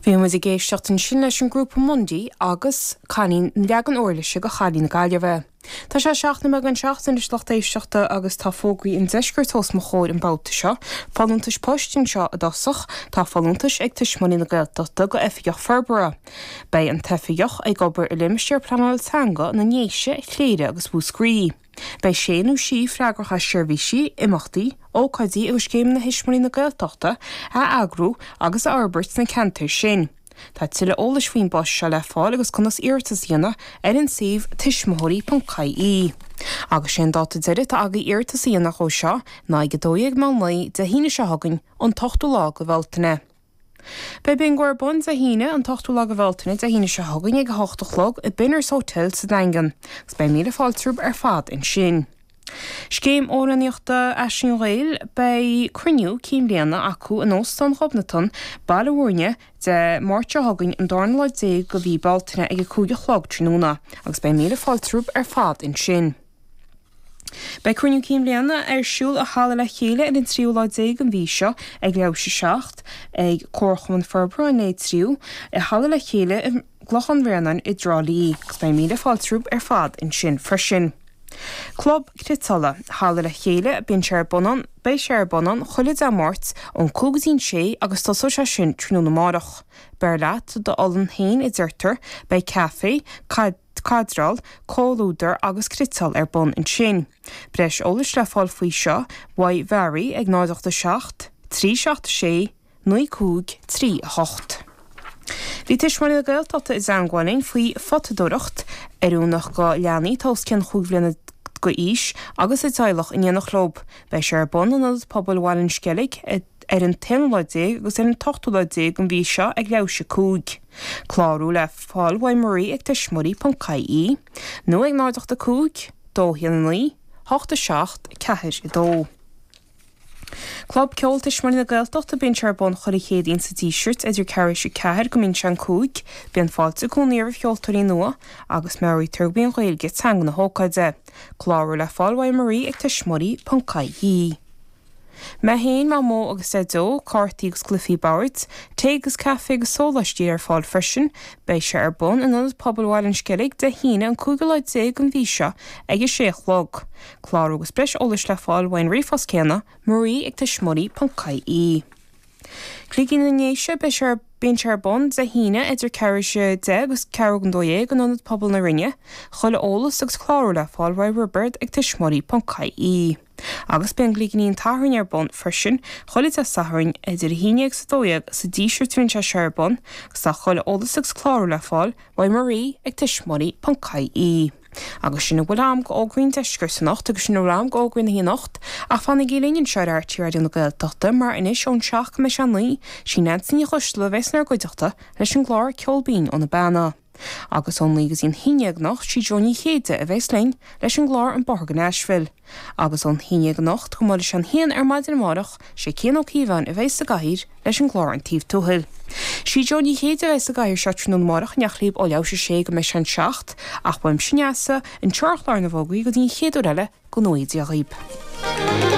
Bhí muid ag éisteacht ansin leis an grúpa Mundy agus cailín an leagan uirlise go Chailín na Gaillimhe. Tá sé seacht nóiméad don seacht anois lucht éisteachta agus tá fógraí an deiscirt os mo chomhair an babhta seo. Folúntais poist anseo i dtosach. Tá folúntais ag Tuismitheoirí na Gaeltachta go Oifigeach Forbartha. Beidh an t-oifigeach ag obair i limistéar pleanála teanga na nDéise, Chléire agus Mhúscraí. Beidh sé nó sí freagrach as seirbhísí, imeachtaí, ócáidí agus scéimeanna Thuismitheoirí na Gaeltachta a eagrú agus a fhorbairt sna ceantair sin. Tá tuilleadh eolais faoin bpost seo le fáil agus conas iarratas a dhéanamh ar an suíomh tuismitheoirí.ie. Agus sé an dáta deiridh atá agaibh iarratas a dhéanamh dó seo ná ag 12 meán lae Dé hAoine seo chugainn, an t-ochtú lá de Bhealtaine. Beidh Bingo ar bun Dé hAoine, an t-ochtú lá de Bhealtaine, Dé hAoine seo chugainn ag a hocht a chlog i Benners Hotel sa Daingean agus beidh míle fáilte romhaibh ar fad ansin. Scéim amhránaíochta Aisling Gheal Beidh cruinniú cinn bliana acu in Óstán Ghobnatan, Baile Mhúirne, Dé Máirt seo chugainn, an darna lá déag de mhí Bealtaine ag a cúig a chlog tráthnóna agus beidh míle fáilte romhaibh ar fad ansin. Beidh Cruinniú Cinn Bhliana ar siúl i Halla Le Chéile ar an tríú lá déag den mhí seo ag leathuair théis a 7, ag Comharchumann Forbartha an Leith Triúigh, i Halla Le Chéile i gClochán Bhréanainn i dTrá Lí, agus beidh míle fáilte romhaibh ar fad ansin freisin. Club Criotála, Halla Le Chéile, Bíonn sé ar bun an, beidh sé ar bun an, chuile Dé Máirt ón cúig go dtí an sé agus tosóidh sé sin tráthnóna amárach. Beir leat d'olann féin a deirtear, beidh caife, cadráil, comhluadar agus criotáil ar bun ansin. Breis eolais le fáil faoi seo uaidh Mhary ag 087 376 9538. Bhí tuismitheoirí na Gaeltachta i dteangmháil linn faoi photadóireacht oiriúnach go leanaí atá os cionn chúig bhliana d'aois agus a dteaghlach in éineacht leo. Beidh sé ar bun in Ionad Pobail Bhaile an Sceilg ag. ar an t-aonú lá déag agus ar an t-ochtú lá déag den mhí seo ag leathuair théis a 5. Clárú le fáil uaidh Marie ag tuismitheoirí.ie nó ag 0 8 5 2 1 9 8 7 4 2. Club Ceoil Tuismitheoirí na Gaeltachta Bíonn sé ar bun chuile Chéadaoin sa Díseart idir ceathrú théis a ceathair go mbíonn sé an cúig. Bíonn fáilte i gcónaí roimh cheoltóirí nua agus meabhraítear gurb í an Ghaeilge teanga na hócáide. Clárú le fáil uaidh Marie ag tuismitheoirí.ie. Mé féin, Mamó agus Deaideo, cártaí agus cluifí boird, tae agus caife agus sóláistí ar fáil freisin. Beidh sé ar bun in Ionad Pobail Bhaile an Sceilg, Dé hAoine, an cúigiú lá déag den mhí seo ag a sé a chlog. Clárú agus breis eolais le fáil ón ríomhphost céanna, marie ag tuismitheoirí.ie. Cloigín na nDéise, Beidh sé ar Bíonn sé ar bun Dé hAoine idir ceathrú théis a deich agus ceathrú chun dó dhéag in Ionad Pobail na Rinne. Chuile eolas agus clárú le fáil uaidh Roibeard ag tuismitheoirí.ie. Agus beidh an Gligín an tSathairn ar bun freisin chuile Dé Sathairn idir a haon dhéag 's a dó dhéag sa Díseart a bhíonn sé seo ar bun agus tá chuile eolas agus clárú le fáil uaidh Marie ag tuismitheoirí ponc ie Agus sin a bhfuil a'm de fhógraí ón Deisceart anocht agus sin a bhfuil a'm de fhógraí na hAoine anocht ach fanaigí linn anseo ar RTÉ Raidió na Gaeltachta mar anois ón seacht go mbeidh sé a naoi sí Neansaí Ní Choisdealbha a bheas inár gcuideachta leis an gclár Ceol Binn ó na Beanna. Agus ón naoi go dtí an haon déag anocht sí Jó Ní Chéide a bhéas linn leis an gclár An Bóthar go Nashville. Agus ón haon déag anocht go mbeidh sé an haon ar maidin amárach sé Cian Ó Cíobháin a bhéas sa gcathaoir leis an gclár An Taobh Tuathail. Sí Jó Ní Chéide a bhéas sa gcathaoir seo tráthnóna amárach in éineacht libh ó leathuair tar éis a sé go mbeidh sé an seacht ach uaimse Neasa anseo ar chlár na bhfógraí go dtí an chéad uair eile go ngnóthaí Dia Dhaoib.